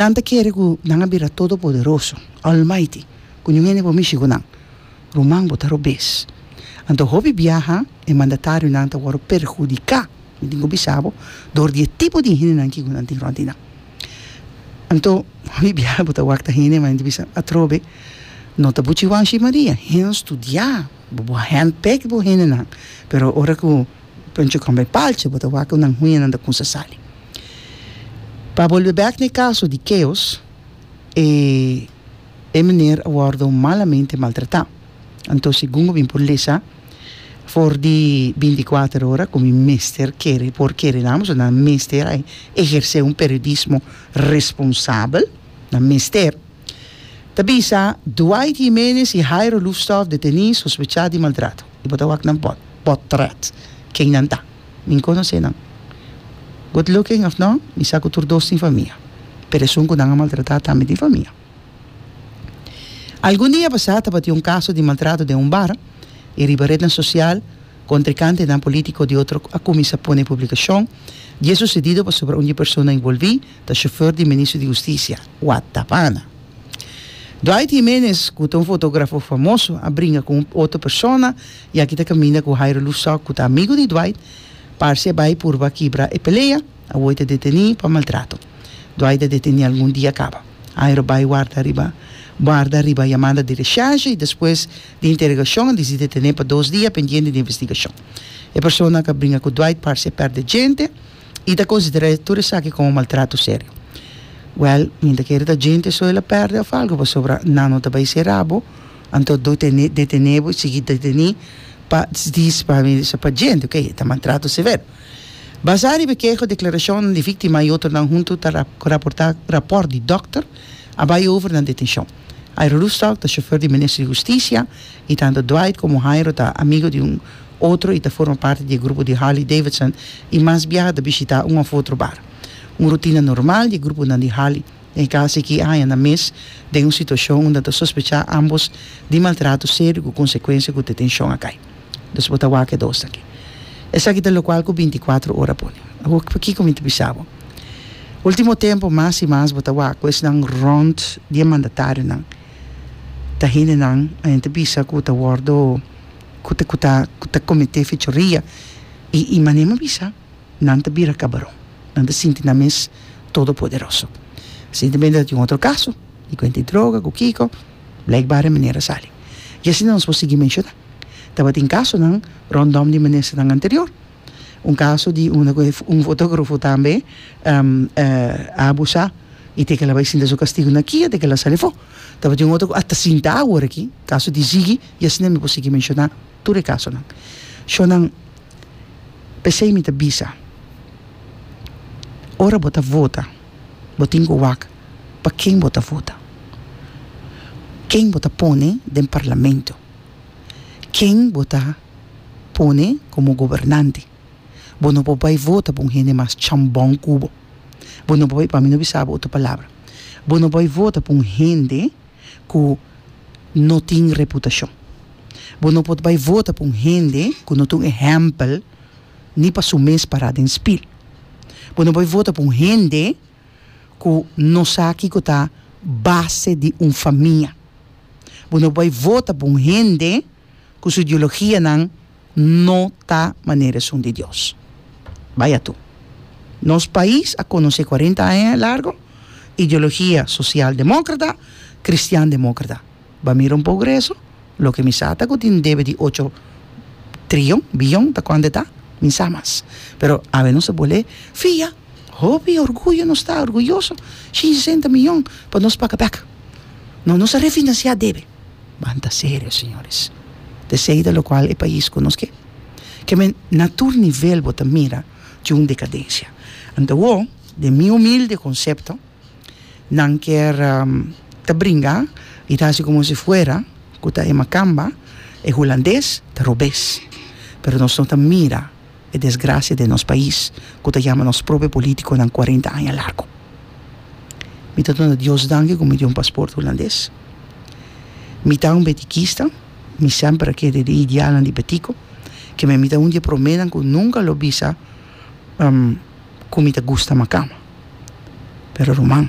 Nan ta kere ku nan a bira todopoderoso, almighty, ku niun hende por mishi ku nan. Ruman, bo ta robes. Anto hopi biaha e mandatarionan ta wòrdu perhudiká, mi tin ku bisa bo, dor di e tipo di hendenan ki ku nan tin rònt di nan. Anto, hopi biaha bo ta wak ta hende, ma nan ta bisa, Atrobe, no ta bo Chihuahua shi Maria. Hèn studiá bo, bo a handpicked bo hendenan, pero ora ku. Pancho kamba e palchi bo ta wak ku nan huñanan ta kunsa sali. Pa bolbe bèk na e kaso di Keos, e e mener a wòrdu malamente maltratá. Anto segun bo bin por lesa, for di binticuater ora ku mi mester kere por kere nan bo, so nan mester a ehersé un periodismo responsabel, nan mester, ta bisa Dwight Jiménez i Jairo Lusthof detené sospechá di maltrato. Y bo ta wak nan pot, potret, ken nan ta. Mi nconoce nan. Good looking of no, mi sa cu tur dos tin famia. Pero esun cu nan a maltrata tambe tin famia. Algun dia pasá tabatin un caso di maltrato den un bar y riba rednan social contrecantenan politico di otro a cuminsa pone publicacion di e sucedido pasobra un di e persona involví ta chauffeur di e Ministro di Husticia, Watt Tapana. Dwight Jiménez, cu ta un fotografo famoso, a bringa cu un otro persona y aki ta caminda cu Jairo Lusock, cu ta amigo di Dwight. Parce a bay purba kibra e pelea. Awoy ta deteni pa maltrato. Dwight a deteni algun dia caba. Jairo a bay warda riba warda riba yamada di recherche y despues di interegacion a dici detene pa dos dia pendiente di investigacion. E persona cu a bringa cu Dwight parce a perde djente. i ta konsiderá tur esaki komo maltrato serio. Wèl, mi ta kere ta djente so el a pèrdè òf algu pasobra nan no ta bai sera abo, anto do tene detené bo i sigui detené pa di pa mi di pa djente, ok, ta maltrato severo. Basá riba keho, deklarashonnan di víktima i otronan huntu ta raportá rapòrt di dòkter a bai over na detenshon. Hajro Roestalk ta shofèr di Minister di Hustisia i tantu Dwight komo Hajro ta amigo di un. otro i ta forma parti di e grupo di Harley-Davidson i mas biaha ta bishitá un òf otro bar. Un rutina normal di e gruponan di Harley den e kas ei ki aña na mes den un situashon unda ta sospechá ámbos di maltrato serio ku konsekuensia ku detenshon a kai. Dus bo ta wak e dos aki. Esaki ta lokual ku binti kuatro ora pone. Awor pakiko mi ta bisa bo? Último tempu mas i mas bo ta wak ku esnan rònt di e mandatarionan. Ta hendenan a enta bisa ku ta wòrdu. ku ta ku ta ku ta kometé fechoria i i manera mi bisa nan ta bira kabaron nan ta sinti nan mes todo poderoso resientemente ta tin un otro kaso di kuenta di droga ku kiko blek bare manera a sali i asi nos por sigui menshoná tabatin kasonan rondom di minesternan anterior un kaso di una ku e un fotografo tambe a abusá i te kila bai sinta su kastigu na kia te kila sali afó tabatin un otro ku asta sinta awor aki kaso di Ziggy. I asina mi por sigui menshoná tur e kasonan. Shonnan, P'esei mi ta bisa, ora bo ta vota, bo tin ku wak pa ken bo ta vota, ken bo ta pone den parlamento, ken bo ta pone komo gobernante. Bo no por bai vota pa un hende mas chambon ku bo. Bo no por bai, pa mi no bisa bo otro palabra, bo no bai vota pa un hende. ku no tin reputashon. Bo no por bai vota pa un hende ku no ta un ehèmpel ni pa su mes pará den spil. Bo no bai vota pa un hende ku no sa kiko ta base di un famia. Bo no bai vota pa un hende ku su ideologianan. No ta manera esun di Dios. Bai atu. Nos pais a conoce cuarenta aña e largo ideologia social democrata, cristian democrata. Ba mira un poco rezo, loke mi sa ta cu tin debe di ocho trion, billon, ta cuande ta? Mi sa mas. Pero awe nos ta bol'e fia, hopi orguyo nos ta, orguyoso, shinshi senta miyon pa nos paca bek. No, nos a refinancia debe. Banta serio, señores. Tecida locual e pais cu nos ke keme na tur nivel bo ta mira cu un decadencia. Antawo, den mi humilde concepto, nan kier ta bringa y ta haci como si fuera cu ta e Macamba, e Hulandes, ta robes. Pero nos no ta mira. e desgracia den nos pais cu ta yama nos propio politiconan cuarenta aña largo. Mi ta duna Dios danki cu mi tin un pasport Hulandes. Mi ta un betikista, mi semper a kere den idealnan di betiko, keme mi ta un di e promenan cu nunca lo bisa cu mi ta gusta macama. Pero ruman,